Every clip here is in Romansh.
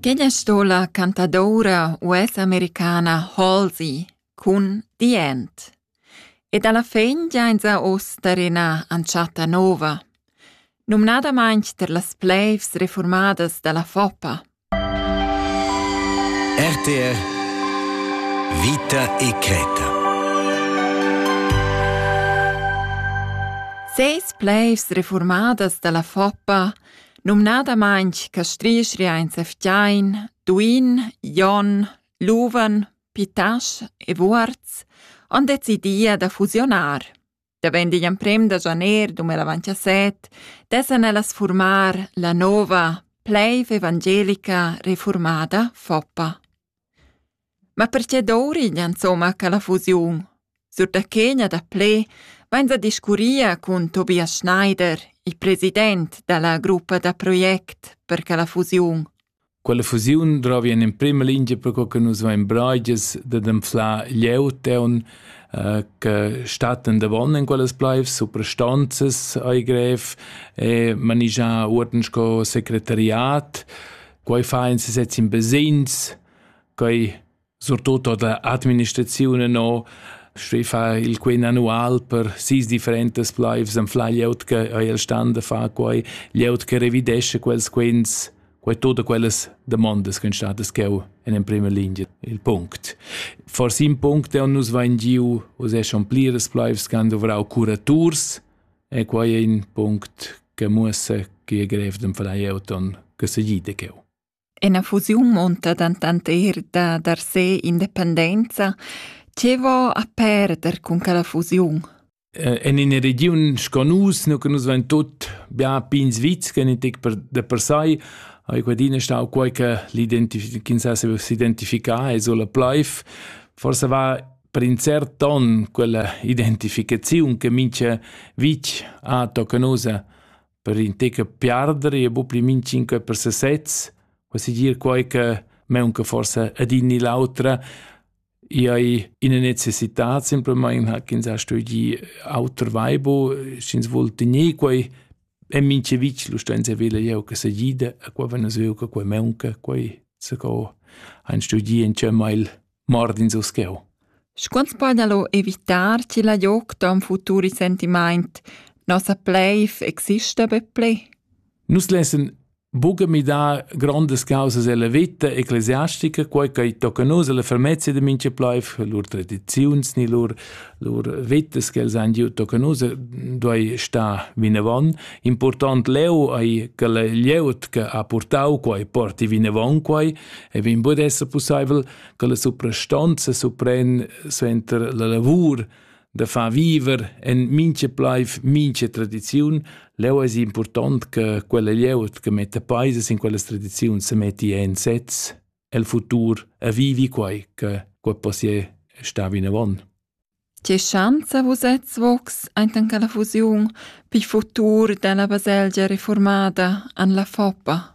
Quella sto la cantadoura US-americana Halsey cun The End. E dalla fin giainsa uss tar ina entschatta nova, numnadamaing tar las pleivs reformadas da la Foppa. RTR Vita e Creta Seis pleivs reformadas da la Foppa Numnadamaing che strisch riainsa fgiain, duin, jon, luven, pitasch e vuorz han decidì da fusionar. Davent digl emprem da janer 2017 dessan ellas furmar la nova Pleiv Evangelica Reformada FOPA. Ma perche dovriglia insomma quella fusiun? Sur da che gna da pled vains a discurrir cun Tobias Schneider, il president da la gruppa da project per quella fusiun. Quella fusiun drovi in emprima lingia per co che nus vain braigias dad anflar glieud eun äh, che statten davon in quellas plaivs, suprastanzas ai grev e manigiar uorden sco secretariat. Quai fa in sezs in besins, Quei surtut ord la administraziun e no stuei far il quen annual per sis differentas pleivs anflar glieud che ei el stan da far quei, glieud che revidescha quels quens, quei tut quellas damondas ch'ein statas cheu en emprema lingia il punct. Forsi in punct dei nus vein giu uss è schon pliras pleivs che han duvrau curaturs e quei è in punct che muossa che è grev d'enflar glieud ton che segida cheu. Ena fusiun munta dentant eir da dar se independenza. Tge vo a perder cun quella fusiun? En ina regiun sco nus, nu che nus vain tut bia pins vits, che tec per da per sai, ha quadina stau quai che ch'ins ha s'identificar es la plaif. Forse va per in cert ton quella identificaziun che mincha vitg ha tocca nosa per in tec piarder e bu pli min 5 per sesez, quasi dir quei che meunca forse adin ni l'autra, i hai ina necessità, semplamain ha ch'ins ha studi auter vaibo, sch'ins vul tener quei, è mince vic lo stenza vela jeu che se gida, a qua vena seo che quei meunca, quei se co han studi in cemma il Mordins uscheu. Scuonz podalo evitar chi la joc ton futur sentimaint nossa pleif exista be ple? Nus lessen buca midar grondas causas ella vita ecclesiastica, quei che tocca nus alla fermezia de mincha pleif, lur tradiziuns ni lur lur vitas che els han giu tocca nus duei star vinavon. Important leu ei che la glieud che ha purtau quei porti vinavon quei e vegn bod esser pussaivel che la suprastanza supren suenter la lavur da far viver en mincha plaiv mincha tradiziun. Leu es important che quella glieud che metta paisas in quellas tradiziuns se metti en sez el futur a vivi quai che quai possia sta vinavant. Tge schanza vusets vocs aintan che la fusiun pil futur dalla baselgia reformada an la Foppa?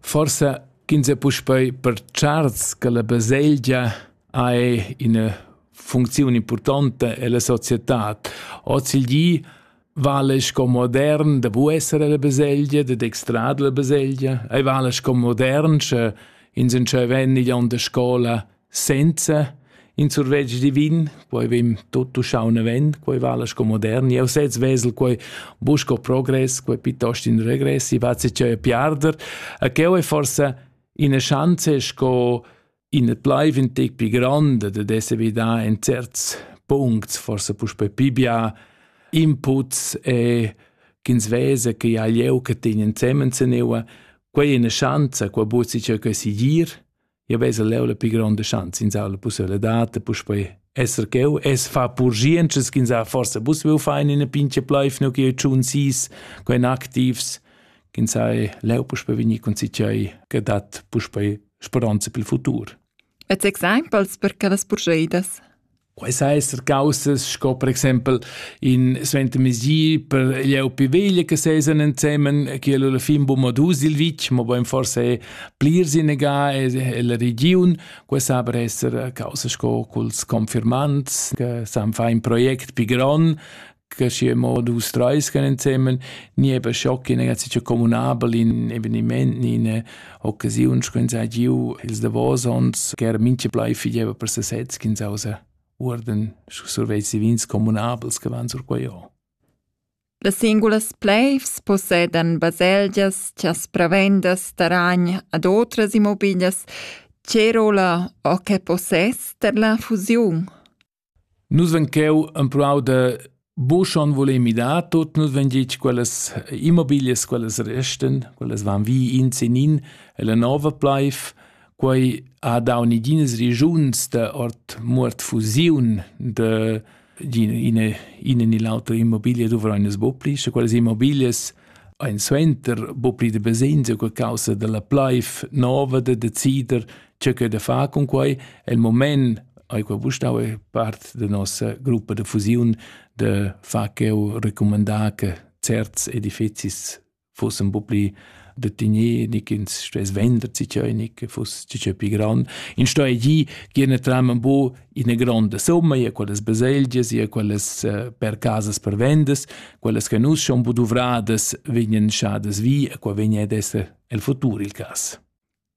Forsa ch'ins è puspei pertscharts che la baselgia ha ina funcziun importanta ella societad. Ozilgi vale sco modern da bu esser ella baselgia, da dextrar la baselgia. Ei vale sco modern, sche ins entscheiva igl onn da scola senza in survetsch divin, poi vegn tutto uschau naven, quei vala sco modern. Eu sez vesel quei busco progress, quei piuttosto in regressi, vazi cheu piarder. A cheu è forse ina chance sco in et bleiv in tec pi grande de desse vida in certs puncts, forse puspe pibia inputs e ch'ins vese che ha lieu che tegnen zemen zeneua, quei è una chance, qua buzi cheu che si gir, Ja vesa leu la pli gronda schanza in sa la possibilità de puspei esser cheu es fa purgientschas ch'ins ha forsa bus veu fein in a pinche pleif nu che tschun sis quen activs ch'ins ha leu puspe vegni con cicei che dat puspe speranza pel futur. Et exempels per quellas purgeidas Quai sa esser caussas sco per exempel in suentermezdi per gli au più veglie che sesan ensemen, che alla fin bumma dus il vitg, ma bein forse è plirs in ega e la regiun. Quai sa per esser causa sco culs confirmands che san far in project pi gron, che schi mo dus treis gan insemen ni eben schock in ega sich communabel in eveniment ni in occasiun schön sei giu ils davosons ger minche blei fideva per se sez kin sausa urden surveits vins communabels che van sur quaio Las singulas pleivs possedan baselgias chas pravendas taragn ad otras immobilias. Tge rolla o che possess per la fusiun? Nus vein cheu empruau da buca schon voler midar tut, nus vein gitg quellas immobilias, quellas restan, quellas van vi in sin in e la nova pleiv. Quei ha dau neginas regiuns da ord muort fusiun da ina ina ni l'autra immobiglia duvrein nus buca pli, sche quellas immobilias ein suenter buca pli da basegns e causa dalla pleiv nova da decider tgeu che da far cun quei el moment ei quei vustau è part da nossa gruppa de fusiun de far cheu recomandar che certs edifizis fossen un po pli de tignir, nicht ins stes vender ci cheu, nicht fuss ci cheu pi grand. In sto e gi giene tram un po in eine grande somma, ja quelles baselgias, ja quelles uh, per casas per vendes, quelles che nus schon po duvradas vegnen schades vi, e qua vegna ad esser el futur il cas.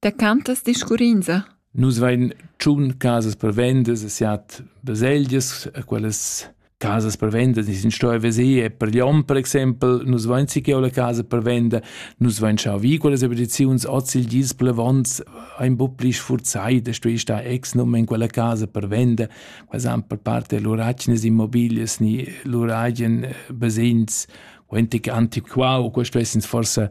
Da cantas discurrinza? Nus vein tschun casas per vendas e siat baselgias, quellas casas per vendas ni sin stoi veser per Lyon per exempel, nus vein si che la casa per venda, nus vein schau vi quellas expediziuns oz il gis plevons ein bu pli sfurzai da stoi sta ex num in quella casa per venda, quels han per parte luragnes immobilias ni luragien basegns quentic antiquau, questo essens forse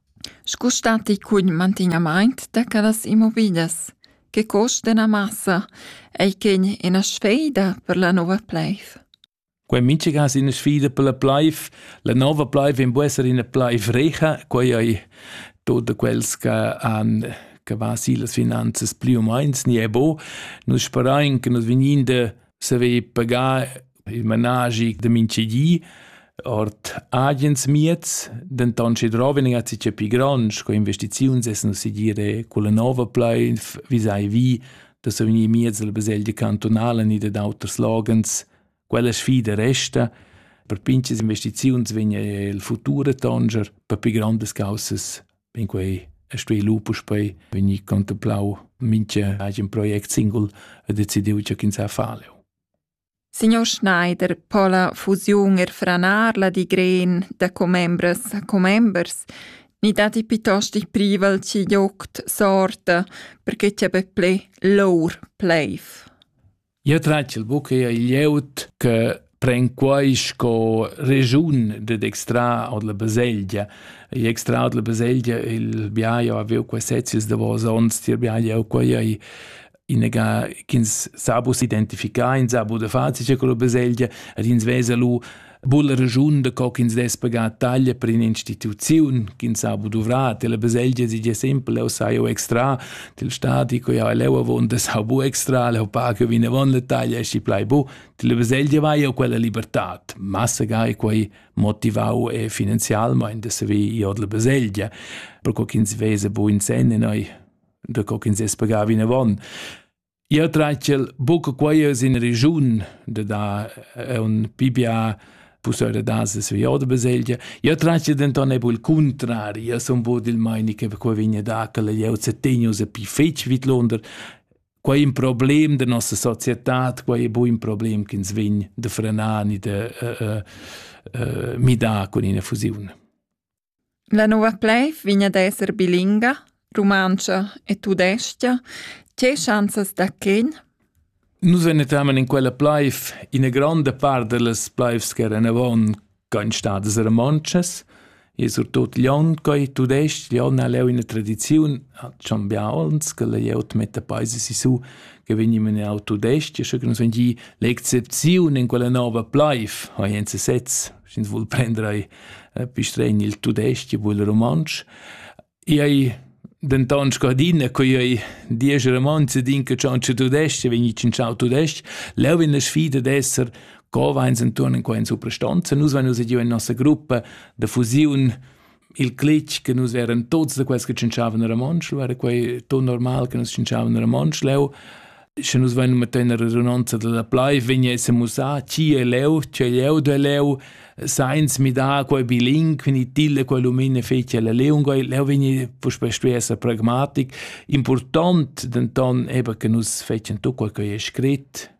Scu statti cun mantignamaint da quellas immobiglias? Che cost d'üna massa ei quegn üna sfeida per la nouva pleiv? Quei in minchacas üna sfida per la pleiv. La nova pleiv vegn bu esser üna pleiv recha, quei ei tot da quels che han che va sillas finanzas plü u meins ni e bo. Nus sperain che nus vegnin da saver pagar il managi da mintgedi ord agens mieds, denton sche droven a ci pi gronds co investiziuns essen si dire quella nova pleif visai vi da so in mieds della baselgia cantonala ni da d'auter slogans quella sfida resta per pinches investiziuns vegna il futur tonger per pi grandes causas in quei e stoi lupus poi vegni contemplau minche agen project singul e decidiu che ins ha faleo Signor Schneider po la fusiun er franar la digren da commembras a commembers ni datti piuttost il privel ch'il joct sorta perche cha be ple lour pleiv. Eu tratg il buc eir il jout che pren quai sco regiun ded extrar od la baselgia. I extraud la baselgia il biaio avieu qua sezius davos ons, tier biaio eu quai ei inega ch'ins sa bus identificar, ins sa bu da fazice con la baselgia, ed ins vesa lu bulla regiun da co ch'ins dess pagar taglia per un'instituziun ch'ins ha bu duvrà, la baselgia si già sempre, leu sai eu extra, til stati co jau leu avon da sa bu extra, leu pa che vinavon la taglia esci plai bu, la baselgia vai jau quella libertad, massa ga e quei motivau e finanzialmein da saver ir la baselgia, per co ch'ins vesa bu in sen e noi da co ch'ins es pagà vinavon. Ia tratgel buca quaias in regiun de da è un pibia pusöre dases vi oda baselgia. Ia tratgel denton ebu il contrari, ia son bod il maini che quai vigne da che leu setegno se pi fetg vid Londra. Quai un problem de nossa società, quai è bu un problem che ins vegn de frenar ni de uh, uh, uh, midar con ina fusione. La nouva pleiv vegn ad esser bilinga, rumantscha e tudais-cha. Tge schanzas da quint? Nus enetamen in quella pleiv ina gronda part dallas pleivs ch'eran avon ch'ein stadas romontschas e surtut Glion, quei tudestg, Glion ha leu ina tradiziun, ha schon bia onns che la glieud metta peisa sisu che vegni menau tudestg, sche che nus vegni l'excepziun in quella nova pleiv, ha Jens sez sch'ins vul prender ei pistregn il tudestg vul romontsch. Ei denton scadina co ei diesch romanze din che ciao tudestg vegni in ciao tudestg leu vegn la sfida d'esser co veins enturn in quen suprastanza nus vein nus giu in nossa gruppa da fusiun il clic che nus eran tuts da quels che tschinchavan a Ramonsch, era quei ton normal che nus tschinchavan a Ramonsch leu. Sche nus vein metter la redunanza della plai, vegn esse musà chi è leu, chi è leu de leu, sainz midar quei biling, quindi tilde quei lumine feci alla leunga, leu vegni puspei stuer essere pragmatic. Important denton eben che nus fecen tu quel che è scrit,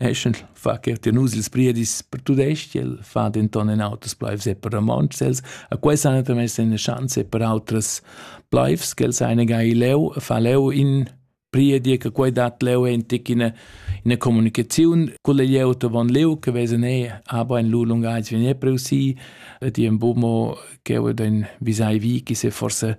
Eschend fa che ti nus ils priedis per tudestg, el fa denton en auters pleivs e per romontschs. Els a quels han mess ina schanza per autras pleivs, che els ein gai leu, fa leu in priedi che quei dat leu entic ina ina comunicaziun culle glieud von leu che vesen e aber in lu lungags vien e preusi ti en bumo che o den visai vi chi se forse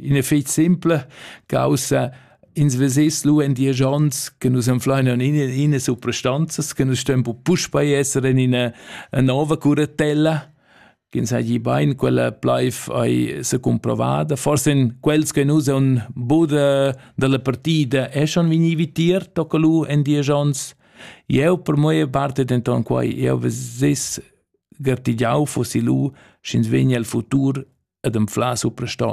in effect simple causa ins vesess lu en dies ons che nus enfleinen in in supprestanzas che nus stem bu puspei esser in ina nova curatella ins ha gi bein quella bleif ei se comprovada forse in quels che nus on bude dalla partida e schon vini vitier tocca lu en dies ons eu per moi parte denton quai eu veses gartigiau fossi lu sch'ins vegni al futur ad enfla superstan